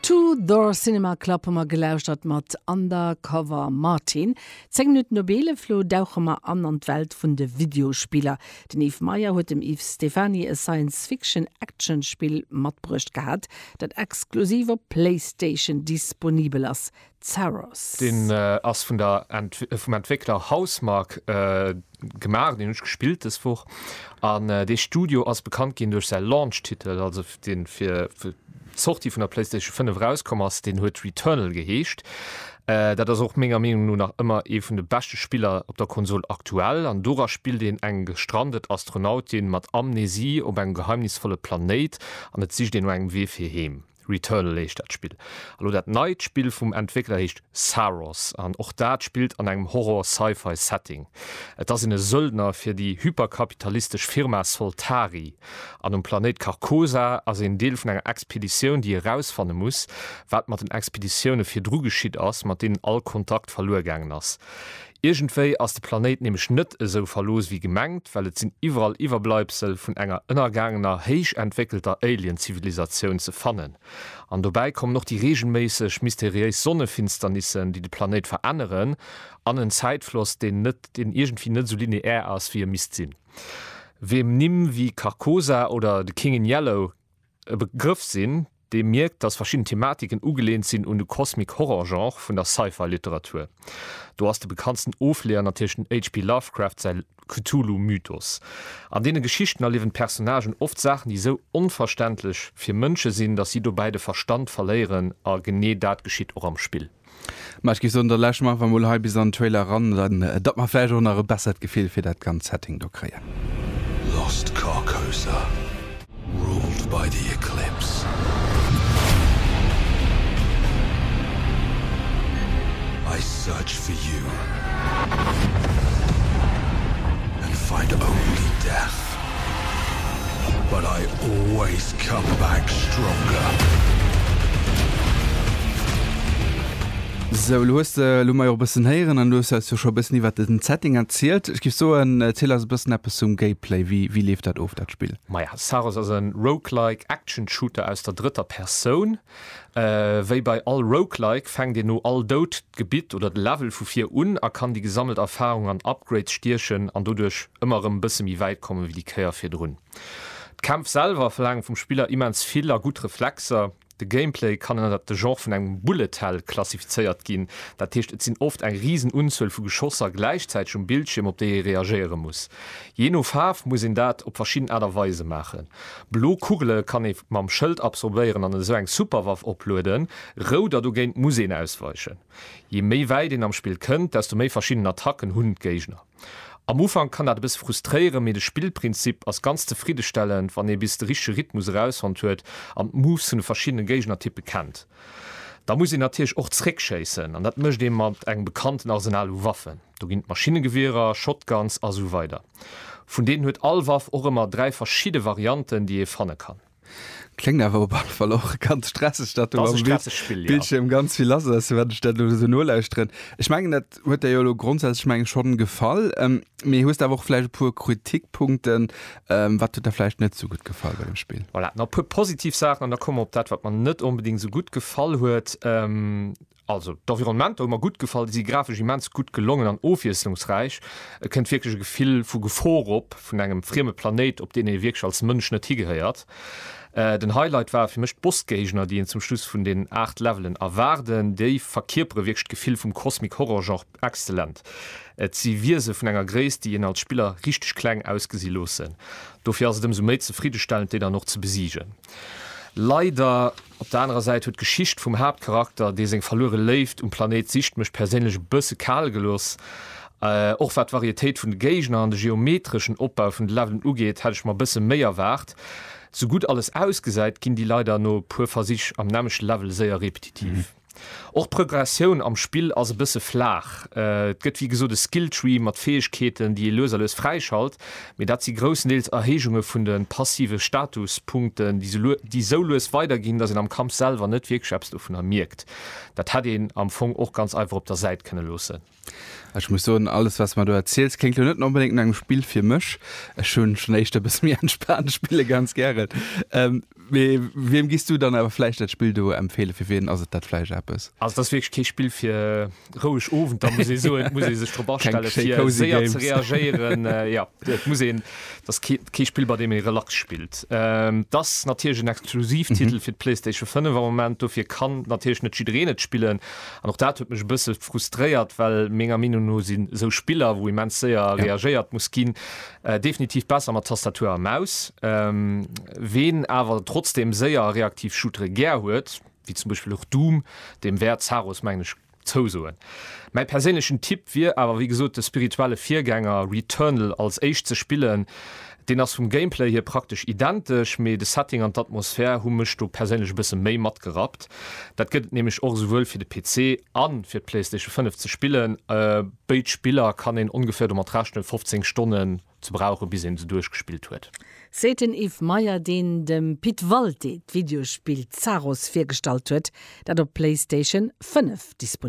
Two Door Cinema Club hu mer gelauschtert mat Undercover Martin. Zéng Minutten op eelef elo dauche mer an an d'Welt vun de Videospiller. Den Yves Meyer huet dem Yves Stephany e Science-Fiction-Action-Spill matbruecht gehat, dat exklusiv op Playstation disponibel ass. Pharos. Deen ass vun der, vum Entwéckler Housemarque gemaach, deen hunn ech gespillt dës Woch an dee Studio ass bekannt ginn duerch säi Launch-Titel, also deen fir d'Sortie vun der Playstation 5 erauskomm ass, deen huet Returnal geheescht. Dat ass och menger Meenung no nach ëmmer ee vun de beschte Spiller op der Konsol aktuell an dora spillt een eng gestrandet Astronautin mat Amnesie op engem geheimnisvolle Planéit an et sicht een no engem Wee fir heem. Returnal heescht dat Spill. A lo dat neit Spill vum Entwéckler heescht Saros an och dat spillt an engem Horror-Sci-Fi Setting. Et ass een e Söldner fir déi hyperkapitalistesch Firma Soltari an um Planéit Carcosa ass een Deel vun enger Expeditioun déi erausfanne muss wat mat den Expeditioune virdru geschitt ass mat deenen all Kontakt verluer gaangen ass. Iergendwéi ass de Planéit nämlech net esou verlooss wéi gemengt, well et sinn iwwerall Iwwerbleibsel vun enger ënnergaangener héich entwéckelter Alien-Zivilisatioun ze fannen. An dobäi kommen och déi reegelméisseg mysteriéis Sonnefinsternissen, déi de Planéit veränneren, an en Zäitfloss, deen net, deen iergendwéi net esou lineär ass, wéi e misst sinn. Wiem Nimm wéi Carcosa oder The King in Yellow e Begrëff sinn, dee mierkt, datt verschidden Thematiken ugelehnt sinn un de Cosmic Horror Genre vun der Sci-Fi Literatur. Do ass de bekanntsten Ofleeër natierlech den HP Lovecraft säi Cthulhu Mythos. An deene Geschichten erliewen d'Personnagen oft Saachen, déi esou onverständlech fir Mënsche sinn, datt si dobäi de Verstand verléieren, a genee dat geschitt och am Spill. Ma ech géif soen, da lauschteren mer einfach emol hei bis an den Trailer eran, dann datt mer vläicht och nach e bessert Gefill fir dat ganzt Setting do kréien. Lost Carcosa, ruled by the Eclipse. I search for you and find only death. But I always come back stronger. Sou, elo hues de, elo hu mer jo och e bëssen héieren an elo hues de eis jo scho e bëssen iwwert den Setting erzielt. Ech géif soen, erziel eis e bëssen eppes zum Gameplay. Wéi, wéi leeft dat of, dat Spill? Maja, Saros ass e Roguelike Action Shooter aus der drëtter Persoun. Wéi bei all Roguelike fänkt een no all Doud d'Gebitt oder de Level vu vir un a kann déi gesammelt Erfarung an Upgrades stiechen an doduerch ëmmer erëm e bësse méi wäit komme wéi déi Kéier virdrun. D'Kämpf selwer verlaange vum Spiller immens vill a gutt Reflexer. De Gameplay kann ënnert de Genre vun engem Bullet Hell klassifizéiert ginn, dat heescht et sinn oft eng risen Unzuel vu Geschosser gläichzäiteg um Bildschierm op déi ee reagéiere muss. Jee no Faarf muss een dat op verschidden Aart a Weise maachen. Blo Kugele kann ee mam Schëld absorbéieren an esou eng Superwaff oplueden, rout der dogéint muss een ausweichen. Je méi wäit een am Spill kënnt, desto méi verschidden Attacken hunn d'Géigner. Am Ufank kann dat e bësse frustréieren, mee de Spillprinzip ass ganz zefriddestellend, wann ee bis de richtege Rhythmus erausfonnt huet an d'Moves vun de verschiddene Géignertyppe kennt. Da muss een natierlech och zeréckschéissen an dat mécht ee mat engem bekannten Arsenal u Waffen. Do ginn d'Maschinnegewierer, Shotguns a sou weider. Vun deenen huet all Waff och ëmmer dräi verschidde Varianten, déi ee fanne kann. Kléngt awer op alle Fall och ganz stresseg, datt do am Bildschierm ganz vill lass ass, wat ech dat elo esou nolauschteren. Ech mengen, dat huet der jo elo grondsätzlech mengen schonn gefall, mee hues de awer och vläicht e puer Kritikpunkten? Wat huet der vläicht net esou gutt gefall bei dem Spill? Voilà, nach e puer positiv Saachen an da komme mer op dat, wat mer net onbedéngt esou gutt gefall huet. Also d'Environnementer hu mer gutt gefall, déi si grafesch immens gutt gelongen an ofwiesslungsräich. Et kënnt wierklech e Gefill vu Gefor op, vun engem frieme Planéit, op deen ee wierklech als Mënsch net higehéiert. Den Highlight ware fir mech d'Bossgéigner, déi een zum Schluss vun den 8 Levelen erwaarden. Déi verkierpere wierklech d'Gefill vum Cosmic Horror Genre exzellent. Et si Wiese vun enger Gréisst, déi een als Spiller richteg kleng ausgesi loossen. Dofir ass et ëmsou méi zefriddestellend, déi dann och ze besiegen. Leider Op der anerer Säit huet d'Geschicht vum Haaptcharakter, dee seng verluere Léift um Planéit sicht, mech perséinlech e bësse kal gelooss. Och wat d'Varietéit vun de Géigner an de geometreschen Opbau vun de Levelen ugeet, hätt ech mer e bësse méi erwaart. Sou gutt alles ausgesäit, ginn déi leider no e puer Versich am nämmlechte Level séier repetitiv. Och d'Prögressioun am Spill ass e bësse flaach. Et gëtt wéi gesot e Skilltree mat Fäegkeeten, déi ee lues a lues fräischalt, mee dat si groussendeels Erhéijunge vun de passive Statuspunkten, déi sou lues weiderginn, datt een am Kampf selwer net wierklech eppes dovunner mierkt. Dat hätt een am Fong och ganz einfach op der Säit kënne loossen. Ech muss soen, alles wat s de mer do erziels, kléngt lo net onbedéngt no engem Spill fir mech. Ech hu schonn éischter e bësse méi entspaant Spille ganz gären. Mee wiem giss du dann awer vläicht dat Spill do empfeelen? Fir wien ass et dat vläicht eppes? Also et ass wierklech kee Spill fir roueg Owenter, muss ee soen. Et muss ee sech drop astelle fir séier ze reagéieren. Jo, et muss een, et ass kee Spill bei deem ee relax spillt. Et ass natierlech en Exklusivtitel fir d'Playstation 5 am Moment, dofir kann natierlech net jiddereen et spillen. An och dat huet mech e bësse frustréiert, well menger Meenung no sinn esou Spiller, wou immens séier reagéiert muss ginn, definitiv besser mat Tastatur a Maus. Ween awer trotzdem séier a reaktiv Shootere gär huet, wéi zum Beispill och Doom, deem wäert Zaros, mengen ech, zousoen. Mäi perséinlechen Tipp wier awer wéi gesot de spirituelle Virgänger Returnal als éischt ze spillen, Deen ass vum Gameplay hier praktesch identesch, mee de Setting an d'Atmosphär hu mech do perséinlech e bësse méi matgerappt. Dat gëtt et nämlech och esouwuel fir de PC a fir d'Playstation 5 ze spillen. Béid Spiller kann een ongeféier domat rechnen, 15 Stonnen ze brauchen, bis een se duerchgespillt huet. Seet den Yves Meyer, deen dem Pit Walté d'Videospill Zaros virgestallt huet, dat op Playstation 5 disponibel ass.